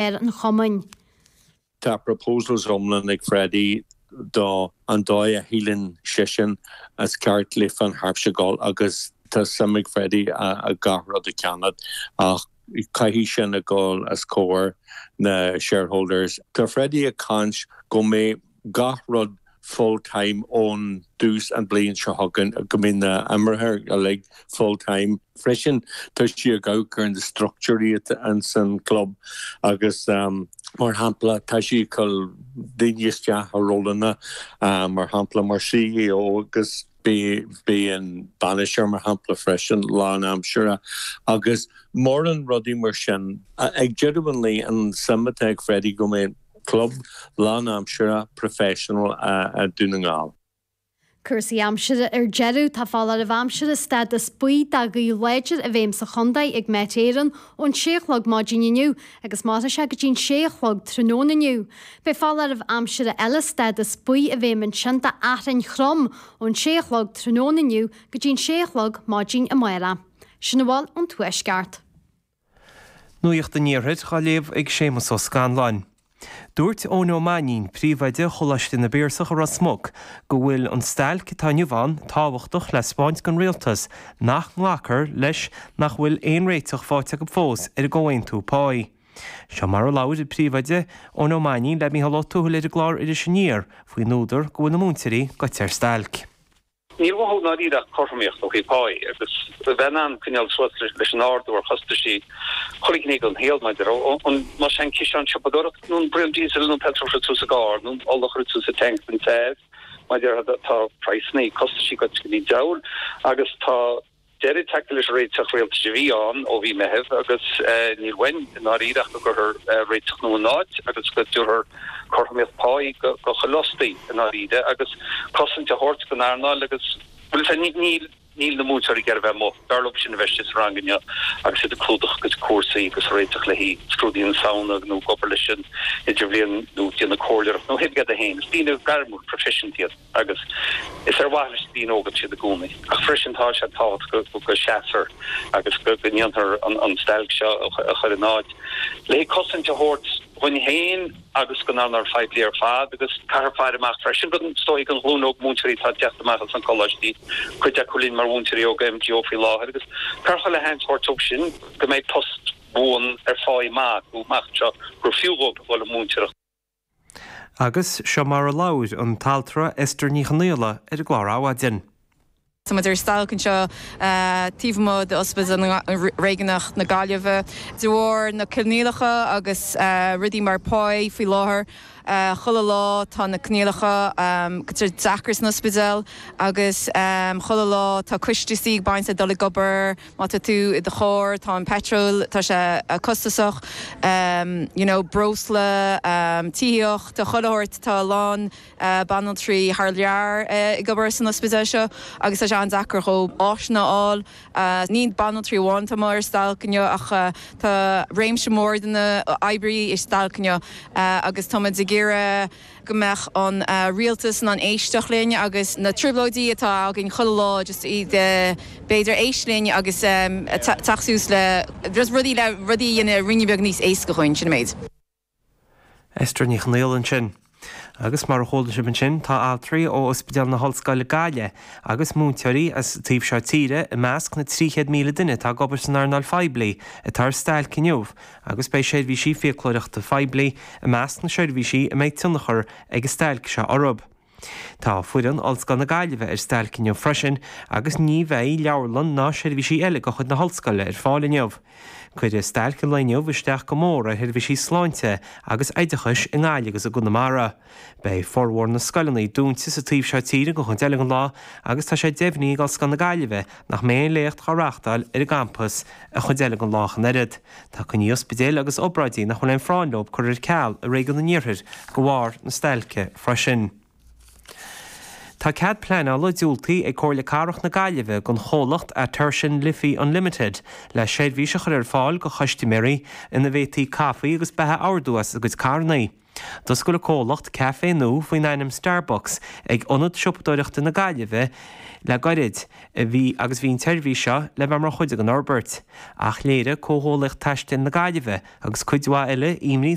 ar an Chumainn. Tá Proposals iomlán ag Freddie do an dóigh a shíleann seisean is ceart le Finn Harps a dhul agus tá suim ag Freddie i gach rud a cheannach ach caithfidh sin a dhul os comhair na shareholders. Tá Freddie ag caint go mbeidh. gach rud full time ón dtús an bhliain seo chugainn, go mbeidh na himreoirí uilig full time. Freisin tá sé ag amharc ar na structúirí atá ins an chlub agus mar shampla tá sé ag cur daoine isteach i rólanna mar shampla mar CEO agus. Bíonn bainisteoir, mar shampla, freisin lánaimseartha agus mórán rudaí mar sin. Ag deireadh an lae, an suim atá ag Freddie go mbeidh club lánaimseartha, professional, ag Dún na nGall. Cúrsaí aimsire ar deireadh. Tá foláireamh aimsire stádas buí do ghaoth láidir i bhfeidhm sa chontae ag Met Éireann ón sé a chlog maidin inniu agus mairfidh sé go dtí an sé a chlog tráthnóna inniu. Beidh foláireamh aimsire eile stádas buí i bhfeidhm ansin d'fhearthainn throm ón sé a chlog tráthnóna inniu go dtí an sé a chlog maidin amáireach. Sin a bhfuil ón Tuaisceart. Nuacht an Iarthair á léamh ag Séamus Ó Scanláin. Dúirt Eoin Ó Mainín, Príomhoide Choláiste na bPiarsach i Ros Muc, go bhfuil an stailc atá inniu ann tábhachtach le 'speáint don Rialtas nach nglacfar leis nach bhfuil aon réiteach faighte acu fós ar an gcomhaontú páí. Seo mar a labhair an Príomhoide, Eoin Ó Mainín le Micheál Ó Tuathail ar an gclár Iris Aniar faoin údar go bhfuil na múinteoirí goite ar stailc. Níl uathu i ndáiríre ach cothromaíocht ó thaobh páí agus a bheith in ann coinneáil suas leis an ardú ar chostaisí chuile ghné den saol maidir an más é an ciseán siopadóireachta nó an braon díosail nó an peitreal a chuireann tú sa gcarr nó an ola a chuireann tú sa tanc don teas mar a déarfá. Tá praghsannaí, costaisí goite i dtigh deabhail agus tá. deireadh tagtha leis an réiteach rialtais a bhí ann ó mhí Meithimh, agus níl uainn i ndáiríre ach go gcuirfear réiteach nua in áit agus go dtabharfar cothromaíocht páí do chuile fhostaí i ndáiríre agus cosaint a thabhairt don earnáil agus bhuel, sea, níl, níl na múinteoirí ag iarraidh bheith amuigh. B'fhearr leob sin a bheith istigh sa rang inniu agus iad ag clúdach a gcuid cúrsaí agus ag réiteach le haghaidh scrúduithe na Samhna nó ag obair leis an idirbhliain nó ag déanamh comhairleoireacht nó thig leat a fhéin, is daoine gairmiúla proifisiúnta iad. agus is ar mhaithe leis na daoine óga siad i gcónaí, ach freisin tá sé tábhachtach go seasfar agus go ndéanfar an stailc seo a chur in áit le haghaidh cosaint a thabhairt dhuinn féin agus don earnáil phoiblí ar fad agus caithfear faire amach freisin don todhchaí, don ghlúin óg múinteoirí atá ag teacht amach as na coláistí, cuid acu linn mar mhúinteoirí óga MGO faoi láthair, agus caithfear chuile sheans thabhairt dóibh sin go mbeidh post buan ar pháí maith acu amach anseo gur fiú dhóibh a dhul ag múinteoireacht. Agus seo mar a labhair an t-altra Esther Ní Chonaola ar an gclár Adhmhaidin. Táimid ar stailc anseo taobh amuigh d'Ospidéal Réigiúnach na Gaillimhe de bharr na coinníollacha agus rudaí mar páí faoi láthair. Chuile lá tá na coinníollacha ag éirí deacair san ospidéal agus chuile lá tá costaisí ag baint le dul ag obair. Má tá tú i do charr, tá an peitreal, tá sé costasach, you know, breosla, tithíocht, ach chomh maith, tá a lán banaltraí thar lear ag obair san ospidéal seo agus tá sé an-deacair dhóibh áiseanna a fháil. Ní banaltraí amháin atá amuigh ar stailc inniu ach tá réimse mór de na hoibrithe ar stailc inniu agus táimid ag iarraidh go mbeadh an Rialtas in ann éisteacht linn agus na trioblóidí atá againn chuile lá just iad b'fhéidir éisteacht linn agus teacht suas le just rudaí le rudaí a dhéanamh ruainne beag níos éasca dhúinn, sin an méid. Esther Ní Chonaola ansin. Agus mar a chuala sibh ansin tá altraí ó Ospidéal na hOllscoile Gaillimh agus múinteoirí as taobh seo tíre i measc na 300,000 duine atá ag obair san earnáil phoiblí atá ar stailc inniu agus beidh seirbhísí fiaclóireachta phoiblí i measc na seirbhísí a mbeidh tionchar ag an stailc seo orthu. Tá foireann Ollscoil na Gaillimhe ar stailc inniu freisin agus ní bheidh leabharlann ná seirbhísí eile de chuid na hOllscoile ar fáil inniu. Cuirfidh stailc an lae inniu isteach go mór ar sheirbhísí sláinte agus oideachais i nGaillimh agus i gConamara. Beidh formhór na scoileanna dúnta sa taobh seo tíre go deireadh an lae agus tá sé deimhnithe ag Ollscoil na Gaillimhe nach mbeidh aon léacht dhá reáchtáil ar an gcampas an chuid eile den lá ach an oiread. Tá coinní ospidéil agus obráidí nach bhfuil aon phráinn leo curtha ar ceal i Réigiún an Iarthair de bharr na stailce freisin. Tá cead pleanála diúltaithe ag Comhairle Cathrach na Gaillimhe don chomhlacht Atertion Liffey Unlimited le seirbhís a chur ar fáil do chustaiméirí ina bhféadfaí caife agus beatha a ordú as a gcuid carranna. D'oscail an comhlacht café nua faoin ainm Starbucks ag Ionad Siopadóireachta na Gaillimhe le gairid anois agus bhí an tseirbhís seo le bheith mar chuid den fhorbairt ach léirigh Comhghuaillíocht Taistil na Gaillimhe agus cuid mhaith eile